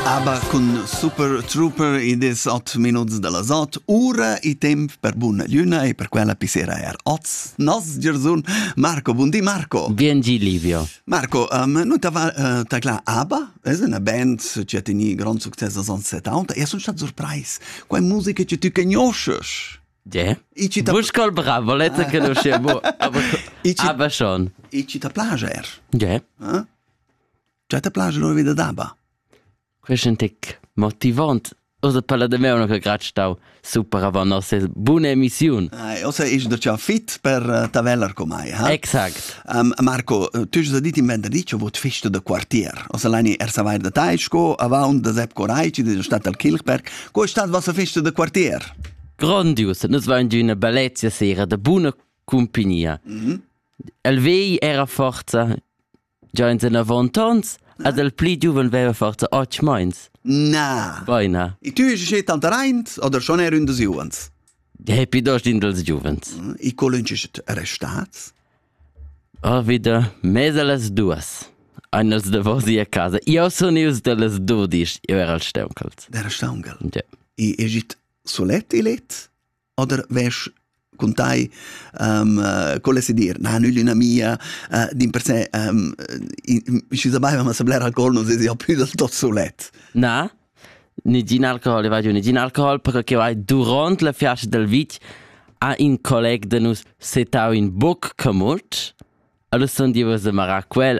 Aber cun Super Trooper id es ot minuts da las ot, ura e temp per buna lüna e per quella pissera er oz. Nos Gersun Marco, buondì Marco. Biengi Livio. Marco, um, nu tava uh, taclà ABBA? Es una band che ha teni grand succes als anni 70 e sun stat surprais. Quai musica che tu conosces. Yeah. I ci ta Buscol bravo, lezza che non scevo. Aber, aber schon. I ci ta plaja er. Yeah. Eh? Cioè te place lur vita daba? Question tic motivant Osa per la demeuna che grat stau super avant nossa buna emissiun. Eh, osa is da ciao fit per uh, tavellar com ai, ha? Exact. Um, Marco, tu hai dit in venerdì che vot festa da quartier. Osa lani er savair da tai, sco avant da Sepp Coraci di stat al Kilchberg, co è stat vossa festa da quartier? Grandios, nus vain di una bellezia sera da buna compagnia. Mm -hmm. El vei era forza Gia in zenavont ons ed el pli giuven veva forza otg meins. Na. Beina. E tu eis schi tanteraint oder schon er un des giuvens? Depi dost in dels giuvens. E colun ci restats? Oh, wieder, mese las duas. Eines de vosi a casa. Io sun ius de les dudis, io era al steuncals. Der Staungel. Ja. E egit solet e let? oder wes con tai um, uh, con se dir na nügli una mia uh, din per se um, ci sapeva ma sablare alcohol non si ha più del tot solet na ni gin alcohol e vai ni gin alcohol perché vai durant la fiascia del vit a in colleg de nus setau in boc camut allora son di was marà quel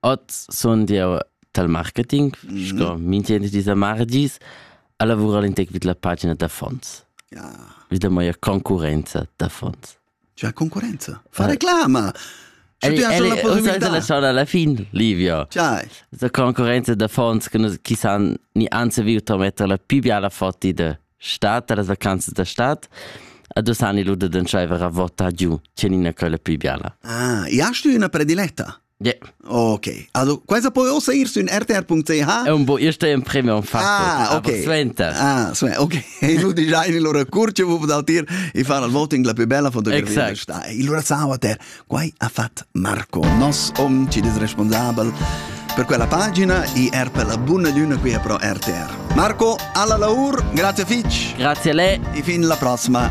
Oz sun jeu dal marketing, sco mintgin dis da mardis, a lavurar in tec vid la pagina d'affons, vi da mia concurenza d'affons. Tgea concurenza? Fa reclama! Ell ussa la schona alla fin, Livio. Tgei? Da concurenza d'affons che nus chi san ni anze viu to metter la più biala fotti de Stat da las vacanzas da stad a dus anni l'uda d'entschaiver a vota giù, tgenina quella più biala. Ah, ja stü üna prediletta? Ja. Okay. Also, questa puoi auch sehen in rtr.ch. È un po' io sto in premium fatto. Ah, okay. Sventa. Ah, sventa. Okay. E nu dici, in loro curce, wo dal tir e far il voting la più bella fotografia. Exact. Sta. E allora sa, ter. Quai ha fat Marco Noss, hom ci des responsabel per quella pagina e er per la buna luna qui a pro RTR. Marco, alla laur, grazie fitch. Grazie a lei. E fin la prossima.